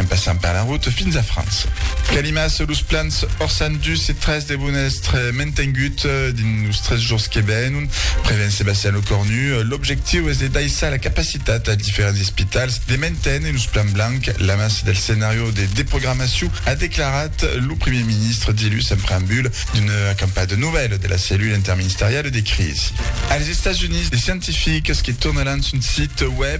en passant per la route fins a França. Calimas los plans Orsan dus e tres devon èstre mantengut dins los tres jorns que venon, prevèn Sébastien Lecornu. L'objectiu es de daissar la capacitat als diferents espitals de manténer los plans blancs lamas del scenàrio de desprogramacion, a declarat lo primièr ministre dilhus en preambul d'una acampada de novèls de la cellula interministeriala de crisi. Als Estats Units, de scientifics que tornaràn son sit web,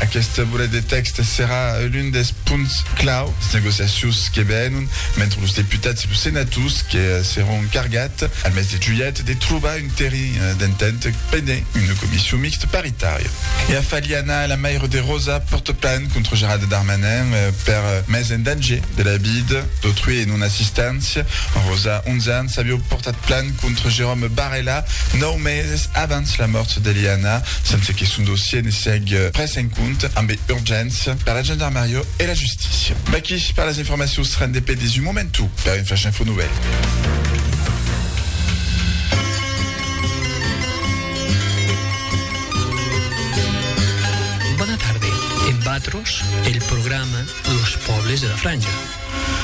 Aqueste volet de tèxt serà l'un dels punts clau des negociacions que venon mentre los deputats e los senators que seràn cargats, al mes de julhet, de trobar un terrenh d'entent pendent una comission mixte paritària. E a Faliana, la maire de Rosa pòrta plan contra Gerald Darmanin per mes en danger de la vida d'autrui e non-assistància. Rosa, 11 ans, aviá pòrtat plan Contra Jérôme Barella, nòu meses abans la mòrt d'Eliana, sense que son dossier ne sièg prés en compte ambe urgéncia per la gendarmariá e la justícia. Vaqui per las informacions rendepedes un momentu per un flash info novèl. Bona tarde, emb atros el programa Los pòbles de la Franja.